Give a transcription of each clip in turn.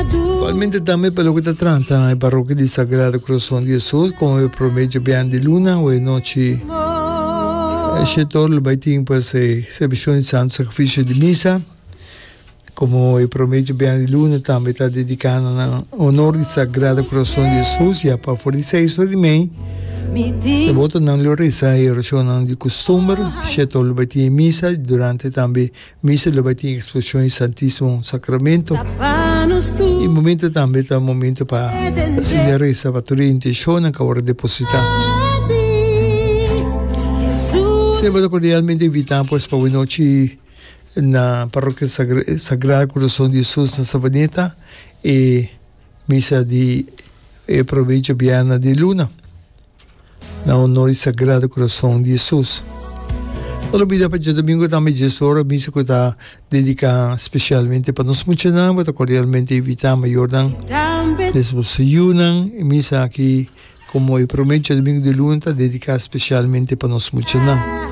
Igualmente tambe pa loke ta trata na e Parrokia di Sagrado Corazon di Jesus como e prome djabian di luna o e nochi e shetor lo bay tin pues e servicion di Santo Sacrificio di Misa como e prome djabian di luna tambe ta dedica na nan honor di Sagrado Corazon di Jesus ya pa for di seis ora di mei e botonan lo reza e oracionnan di costumber shetor lo bay tin e Misa durante tambe Misa lo bai tin exposición di Santísimo Sacramento y momento tambe ta momento pa hacienda reza pa tur e intencionnan cu a wora deposita. Si bo ta cordialmente invita pues pa hui nochi na Parroquia Sagrado Corazon di Jesus na Savaneta e misa di e provecho bianan di luna. na honor di Sagrado Corazon di Jesus. No ta olbida pa dje domingo tambe e djes ora misa cu ta dedica specialmente pa nos muchanan. Bo ta cordialmente invita mayornan des bo seyunan. E misa aki como e prome dje domingo di luna ta dedica specialmente pa nos muchanan.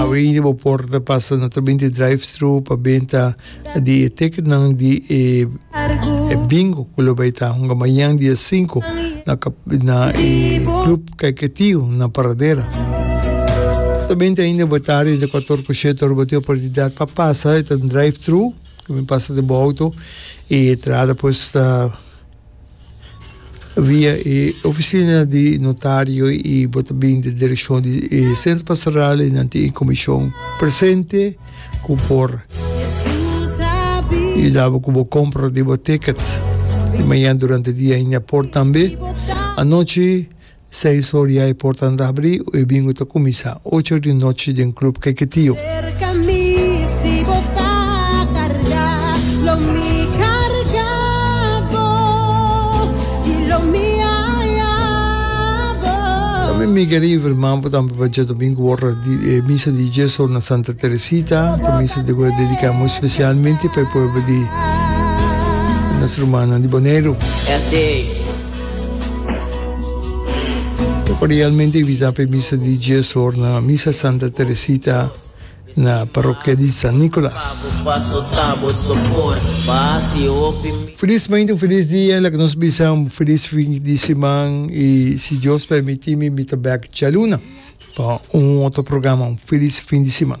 Awe ini bo por ta pasa na tabin di drive-thru pa benta di e ticketnan di e e bingo ku lo bai ta hunga mañan dia sinku na na e Club Kaiketio na Paradera. Ta benta ainda bo tari entre kuator ku shete ora bo tin oportunidat pa pasa e ta un drive-thru ku mi pasa den bo auto e entrada pues ta Via e oficina di notario y bo ta bin di direccion di e Centro Pastoral y nan tin e comision presente cu por yuda bo cu bo compra di bo ticket. Di mañana durante dia hinda por tambe. Anochi. Seis or ya e portan ta habrí o e bingo ta kuminsá ocho di nochi den Club Keketio. Tambe mi kere informá bo tambe pa dje domingo wòrda di e misa di dies or na Santa Teresita, ta misa di goe dediká muy spesialmente pa e pueblo di nos rumannan di Boneiru. Lo por realmente invita pe misa di dies or na Misa Santa Teresita na Parokia di San Nicolas. Felizmente un feliz dia, laga nos bisa un feliz fin di siman y si Dios permiti mi mi ta bek djaluna pa un otro programa, un feliz fin di siman.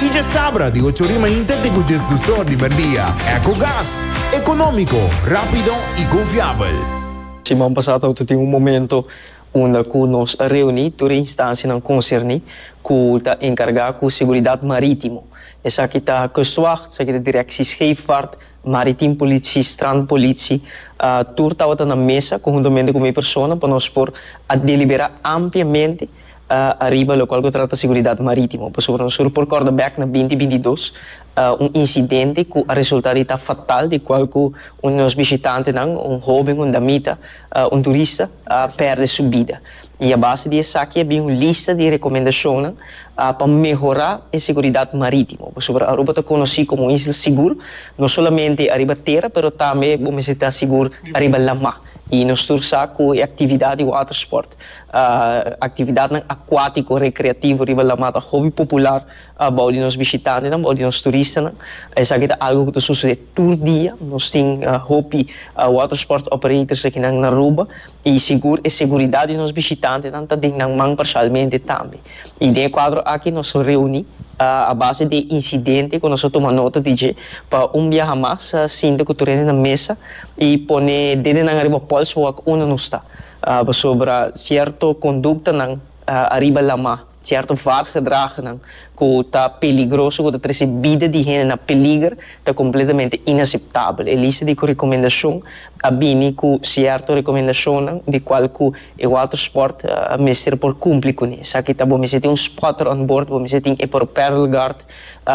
Y dje sabra di ocho ori mainta te cu djes dos or di merdia. Ecogas. Economico, rapido y confiabel. Siman pasá ta auto tin un momento unda cu nos a reuní tur e instancianan concerní cu ta encargá cu seguridad marítimo. Esaki ta Kustwacht, esaki ta Directie Scheepvaart, Maritiem Politie, Strandpolitie. Tur tabata na mesa conjuntamente cu mi persona pa nos por a deliberá ampliamente a ariba locual cu trata seguridad maritimo, pasobra nos sur por corda bek na binti bintidos un incidente cu a resulta di ta fatal di cual cu un di nos bishitantenan, un hoben, un damita, un turista, a perde su bida. Y a base di esaki a bin un lista di recomendacionnan pa mehora e seguridad maritimo, pasobra Aruba ta conoci como un isla sigur, no solamente ariba tera pero tambe bo mester ta sigur ariba lama y nos tur sa cu e actividad di watersport. Actividadnan acuatico recreativo riba lamat ta hopi popular bao di nos bishitantenan, bao di nos turistanan. Esaki ta algo cu ta sucede tur dia. Nos tin hopi watersport operators aki nan Aruba y sigur e seguridad di nos bishitantenan ta den nan man parcialmente tambe. Y den e cuadro aki nos reuni a base di e incidente cu nos a tuma nota di dje pa un biaha mas sinta cu tur hende na mesa y pone dedenan ariba polswak unda nos ta. Pasobra cierto conductanan ariba lama, cierto vaargedragnan cu ta peligroso, cu ta trece bida di hende na peliger, ta completamente inaceptabel. E lista di recomendacion a bini cu cierto recomendacionnan di cual cu e watersport mester por cumpli cune. Esaki ta bo mester tin un spotter on board, bo mester tin e propellerguard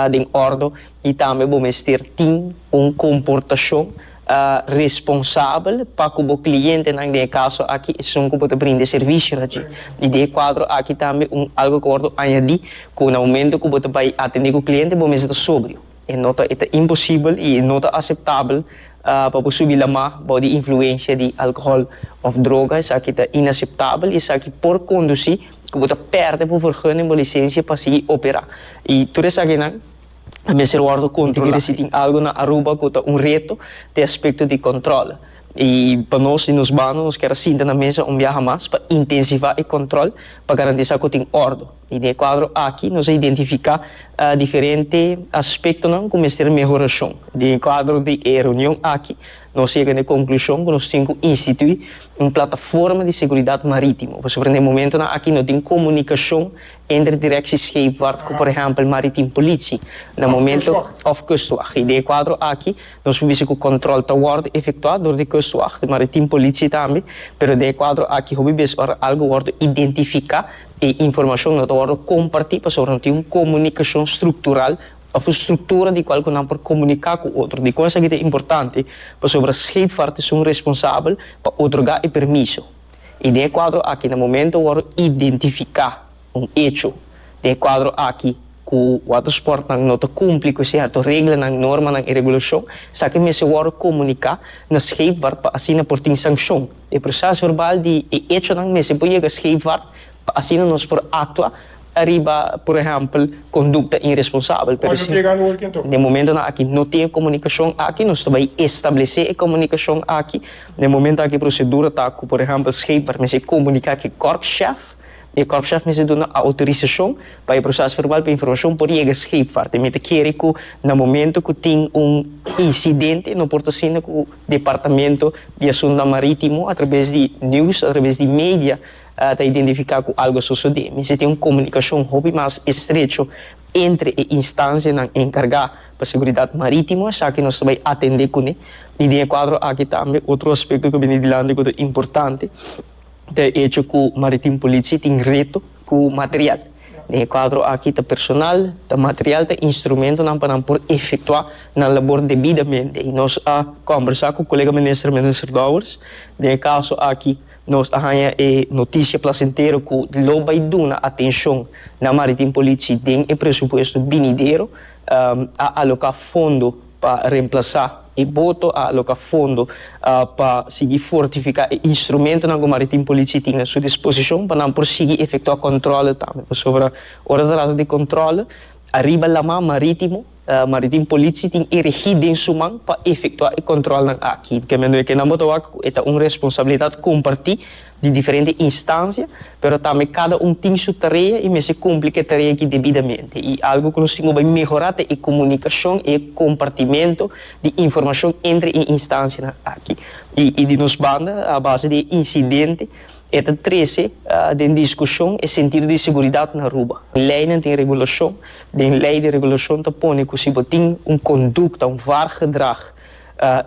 den ordo y tambe bo mester tin un comportacion. a responsabel pa cu bo clientenan den e caso aki esun cu bo ta brinda e servicionan dje. Y den e cuadro aki tambe un algo cu a wordo añadi cu na momento cu bo ta bay atendi cu cliente bo mester ta sobrio. E no ta e ta imposibel y e no ta aceptabel pa bo subi lama bou di influencia di alcohol of droga. Esaki ta inaceptabel y esaki por conduci cu bo ta perde bo vergunning, bo licencia pa sigui opera y tur esakinan. a mester wòrdu kontrolá. Ti kere si tin algu na Aruba ku ta un reto te aspekto di kòntròl. I pa nos di nos bando nos kier a sinta na mesa un biaha mas pa intensivá e kòntròl pa garantisá ku tin òrdu. I den e kuadro aki nos a identifiká diferente aspektonan ku mester mehorashon. Den e kuadro di e reunion aki nos yega na e konklushon ku nos tin ku instituí un plataforma di seguridat marítimo pasobra na e momentunan aki no tin komunikashon Entre direkshi scheepvaart ku por ehèmpel Maritiem Politie na momento òf Kustwag. I den e kuadro aki nos por bisa ku kòntròl ta wòrdu efektuá dor di Kustwag, di Maritiem Politie tambe, pero den e kuadro aki hopi bes ora algu wòrdu identifiká e informashon no ta wòrdu kompartí pasobra no tin un komunikashon struktural òf un struktura di kual ku nan por komuniká ku otro. Dikon esaki ta importante? Pasobra scheepvaart ta sun responsabel pa otorgá e permiso. I den e kuadro aki na momento wor a identifiká un echo den e kuadro aki ku watersportnan no ta kumpli ku sierto reglanan, normanan i regulashon, esaki mester wor komuniká na scheepvaart pa asina por tin sankshon. E prosesverbal di e echonan mester por yega scheepvaart. Pa asina nos por aktua ariba, por ehèmpel, kondukta iresponsabel. Pero si den momentonan aki no tin e komunikashon aki, nos ta bai establesé e komunikashon aki. Den momento aki e prosedura ta ku, por ehèmpel, skeper mester komuniká ku e kòrpshèf i e kòrpshèf mester duna outorisashon pa e proses verbal pa informashon por yega skeper. Teme ta kere ku na momento ku tin un insidente no por ta asina ku Departamento di Asuntunan Marítimo, atrabes di news, atrabes di media, ta identifiká ku algu a sosodé, mester tin un komunikashon hopi mas estrecho entre e instansianan enkargá pa seguridat marítimo, esaki nos ta bai atendé kuné. I den e kuadro aki tambe otro aspekto ku a bini dilanti ku ta importante ta e echo ku Maritim Politie tin reto ku material. Den e kuadro aki ta personal, ta material, ta instrumentonan pa nan por efektuá nan labor debidamente. I nos a kòmbersá ku kolega minister, Minister Dowers, den e kaso aki. Nos a haña e noticia plasentero cu lo bay duna atencion na Maritim Politie den e presupuesto binidero. A aloca fondo pa remplaza e boto, a aloca fondo pa sigui fortifica e instrumentonan cu Maritim Politie tin na su disposicion pa nan por sigui efectua controle tambe. Pasobra ora ta trata di controle ariba laman maritimo, Maritim Politie tin e regi den su man pa efectua e controlnan aki. Kende no e ke nan bo ta wak ku e ta un responsabilidad comparti di diferente instancia, pero tambe cada un tin su tarea y mester cumpli ku e tarea aki debidamente. Y algo ku nos tin ku bai mehora ta e comunicacion y e compartimento di informacion entre e instancianan aki. Y di nos banda, a base di e incidente, E ta trece den discusion e sentido di seguridad na Aruba. Leynan tin regulacion, den ley di regulacion ta pone cu si bo tin un conducta, un vaargedrag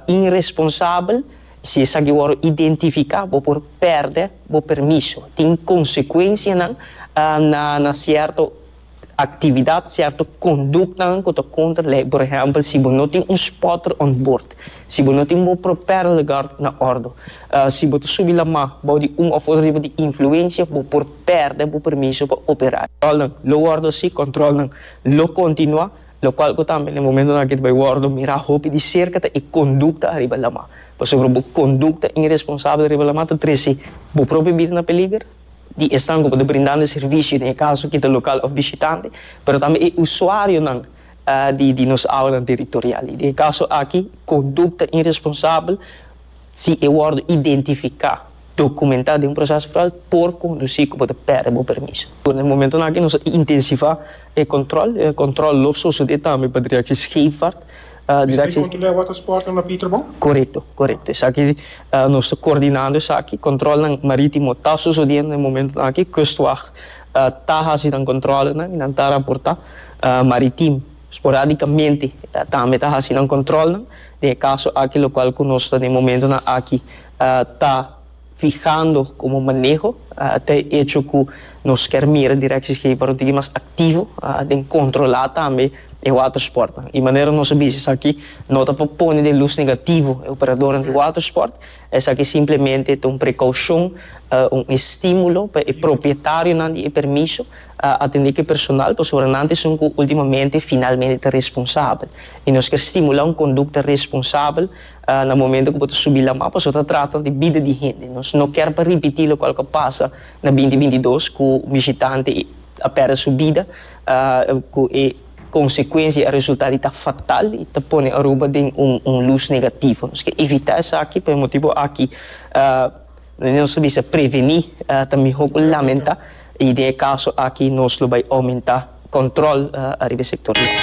irresponsabel, si esaki worde identifica bo por perde bo permiso. Tin consecuencianan na cierto. actividad cierto conductanan cu ta contra ley, por ehempel si bo no tin un spotter on boord, si bo no tin bo propellerguard na ordo, si bo ta subi lama bao di un of riba di influencia bo por perde bo permiso pa operar. Controlnan lo wordo así, controlnan lo continua, locual cu tambe na e momentonan aki ta bay wordo mira hopi di cerca ta e conducta ariba lama, pasobra bo conducta irresponsabel ariba lama ta trece bo propio bida na peliger, di esnan ku por ta brindando e servisio den e kaso kita lokal òf bishitante, pero tambe e usuarionan di nos aulanan teritorial. I den e kaso aki kondukta iresponsabel, si e wòrdu identifiká, dokumentá den un proses foral, por kondusí ku bo ta pèrdè bo permiso. Den e momentonan aki nos a intensifá e kòntròl. Kòntròl lo sosodé tambe pa Direksie Scheepvaart. Distrik kontrol'é watersportnan na Pieterbon? Korekto, korekto. Esaki nos ta koordinando esaki. Kontrolnan marítimo ta sosodiendo den momentonan aki. Kustwag ta hasi nan kontrolenan i nan ta raportá maritim. Sporadikamente tambe ta hasi nan kontrolnan den e kaso aki lokual ku nos ta den momentonan aki ta. fihando como maneho ta e echo cu nos kier mira Directie Scheepvaart un tigi mas activo den controla tambe e watersportnan. Y manera nos a bisa esaki no ta pa pone den luz negativo e operadornan di watersport, esaki simplemente ta un precaucion, un estimulo pa e propietario di e permiso atende cu e personal pasobra nan ta esun cu ultimamente finalmente ta responsabel. Y nos kier stimula un conducta responsabel. Na momento ku bo ta subi lamá pasobra bo ta trata di bida di hende. Nos no ker pa ripití lokual ku a pasa na binti binti dos ku un bishitante a pèrdè su bida ku e konsekuensia i e resultá di ta fatal i ta pone Aruba den un lus negativo. Nos ke evitá esaki. Por e motibu aki nos ta bisa prevení ta mihó ku lamentá i den e kaso aki nos lo bai oumentá kòntròl riba e sektor di Aruba.